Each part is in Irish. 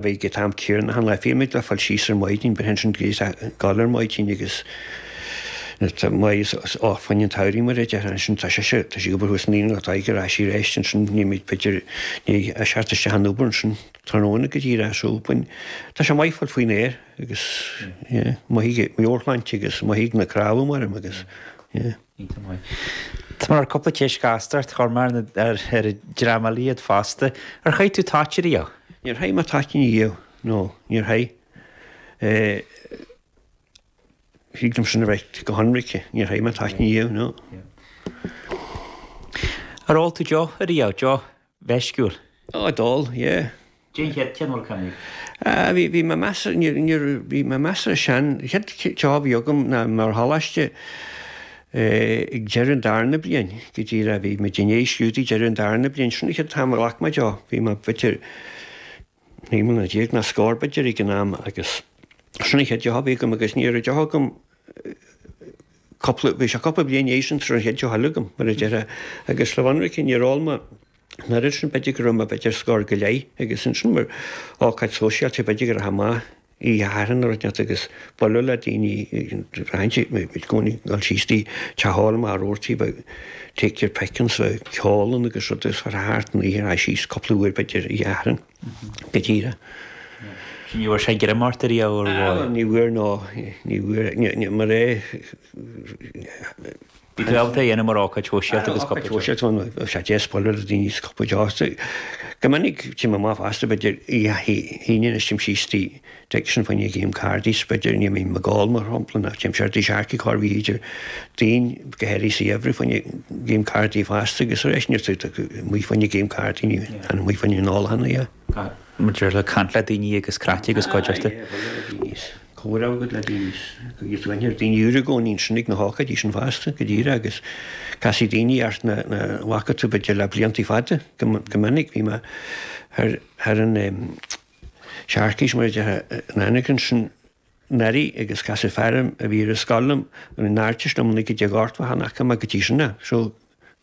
Bhí go tá an t-aer glan le fáil thíos ar maidin, but hints and glees ag gabháil ar maidin agus tá Máigh is áthbhonn an tsamhraidh mar a déarfá ansin, tá sé seo, tá sí obair thuas naíonáin atá ag ar ais arís ansin, nílimid b'fhéidir ní a seacht isteach an obair ansin tráthnóna go dtí ar ais ó bain. Tá sé maith fáil faoin aer agus yeah maithfidh mé ar shláinte agus mothaím na crábha mairim agus yeah. Tá mar cúpla ceist ghasta ort, a chur mar, ar a dtriailfidh muid iad fosta. Ar chaith tú toit ariamh? Níor chaith mé toitín ariamh, nó níor chaith. Thig liomsa a bheith go hionraic, níor chaith mé toitín ariamh, nó. Ar ól tú deoch ariamh, Joe? mheisciúil. Á, d'ól, yeah. Cén chéad cheann? Á, bhí, bhí mé measartha, níor, níor, bhí mé measartha sean, chéad deoch a bhí agam ná ar choláiste ag deireadh an darna bliain, go dtí ré, bhí muid ag éirí as cuid staidéir deireadh an darna bliain, sin an chéad t-am a ghlac mé deoch, bhí mé, b'fhéidir, Naoi mbliana déag nó scór b'fhéidir ag an am agus sin an chéad deoch a bhí agam agus ní raibh deoch agam cúpla, bhí sé cúpla bliain ina dhiaidh sin sula raibh an chéad deoch eile agam mar a déarfá agus le bheith ionraic níor ól mé dáiríre ansin b'fhéidir go raibh mé b'fhéidir scór go leith agus ansin mar ócáid sóisialta b'fhéidir go rachainn amach. i do chaitheamh aimsire agus bualadh le daoine eile i gcónaí, gabháil síos go dtí, teach óil mar a dúirt tú, bheadh Take your pick ann, bheadh ceol ann agus rud agus chuir sé thart an oíche a ghabháil síos cúpla uair b'fhéidir i do chaitheamh aimsire go díreach. Ní bhfuair sé greim ort ariamh ar bhóthar? Ní bhfuair nó ní bhfuair, mar a. Bhí gaolta a dhéanamh mar ócáid shóisialta agus cúpla deoch. Ar an ócáid shóisialta, is deis bualadh le daoine is cúpla deoch, go minic téim amach fosta, b'fhéidir, oíche Aoine anois, téim síos tigh, d'fheicfidh sin ag imirt game cards, b'fhéidir, ní bhím ag ól, mar shampla, ná téim siar go dtí an tSearcaigh thar b'fhéidir daoine go háirithe sa gheimhreadh faoina game cárdaí fosta agus arís théann tú amach faoi choinne game cárdaí, ní théann amach faoi choinne an óil ná. Maidir le caint le daoine agus craic agus cuideachta. Aye, aye, bhuel, ní raibh a fhios. Comhrá agat le daoine agus go n-iarr daoine úra i gcónaí ansin ag na hócáidí sin fosta go díreach agus casfaidh daoine ort nach bhfaca tú b'fhéidir le blianta fada. Go minic bhí mé thar an tSearcaigh mar a déarfá an aonach ansin anuraidh agus casadh fear orm a bhí ar an scoil liom, an Artist, liom ina dhiaidh go dtí chan fhaca mé go dtí sin ná. So,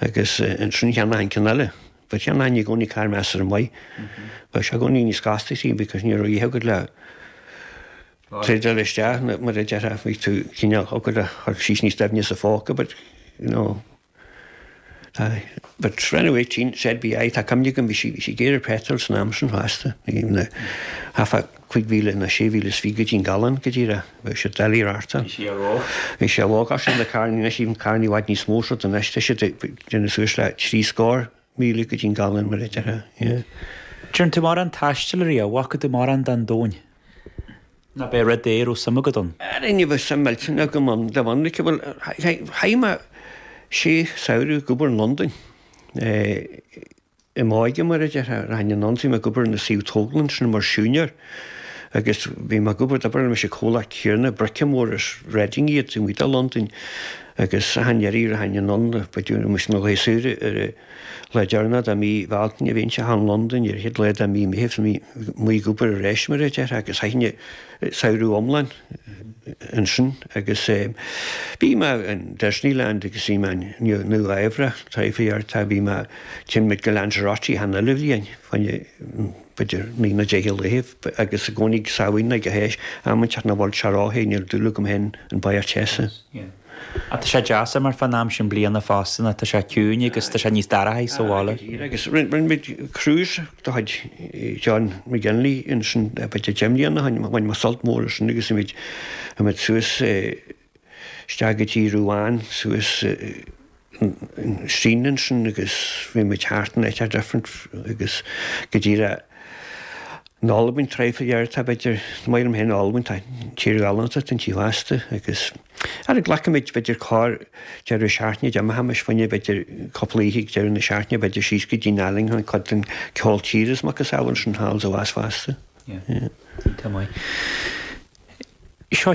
Agus ansin cheannaigh mé an ceann eile. But cheannóchainn i gcónaí carr measartha maith. Bheadh sé i gcónaí níos costasaí because ní raibh a fhios agat le trade-áil isteach nó mar a déarfá bhí tú cineál ag cur síos níos doimhne sa phóca but you know aye. But when I was eighteen so it be aye tá cuimhne agam bhí sí bhí sí géar ar petrol san am sin fosta. Bhí na half a cúig mhíle nó sé mhíle is fiche go dtí an galún go díreach, bhí siad doiligh a reáchtáil. Bhí siad óg. Bhí siad óg ach sin na carrannaí anois, tá carrannaí i bhfad níos mó siad anois, tá siad ag déanamh suas le trí scór míle go dtí an galún mar a deir sé. An ndearn tú mórán taistil ariamh, an bhfaca tú mórán den domhan nó ab é rud é a raibh suim agat ann. Ara ní bheadh suim millteanach agam ann de bhunadh aici. Bhuel, chaith mé sé samhradh ag obair i Londain. i m'óige, mar a déarfá, rachainn anonn is bhí mé ag obair ar na suíomh tógála ansin mar shiúinéir agus bhí mé ag obair, d'obair mé leis an comhlacht céanna, bríceadóirí as Reading iad, taobh amuigh de Londain agus achan iarraidh a rachainn anonn, ba de bhí muid sna laethe saoire ar an lá deireanach de mhí Bhealtaine bhínnse thall in Londain, ar an chéad lá de mhí Meithimh, bhí mé ag obair arís mar a déarfá agus chaithinn an. samhradh iomlán ansin agus bhí mé in Disneyland agus bhí mé in Nua-Eabhrac traidhfil iarrachtaí, bhí mé téimid go Lanzarote achan uile bhliain, b'fhéidir naoi nó deich de laethibh agus i gcónaí Samhain ag an am inteacht nach bhfuil sé róthe, níl dúil agam féin in barraíocht teasa. Ach tá sé deas mar fán am sin bliana fosta nó tá sé ciúin agus tá sé níos dorchaí sa bhaile. Aye, go díreach, agus rinne muid cruise de chuid John McGinley ansin b'fhéidir deich mbliana ó shin, bhain muid sult mór as sin agus bhí muid suas, isteach go dtí Rouen, suas, Seine ansin agus bhí muid thart in áiteacha different agus go díreach in Albain traidhfil iarrachtaí b'fhéidir, is maith liom féin Albain tá tír ghalánta atá inti fosta agus ara glacaimid b'fhéidir corrdheireadh seachtaine d'imeochaimis fá choinne b'fhéidir cúpla oíche ag deireadh na seachtaine b'fhéidir síos go dtí'n Allingham chuig cuid den ceol tíre is a macasamhail sin thall sa bhás fosta. Tá maith. Seo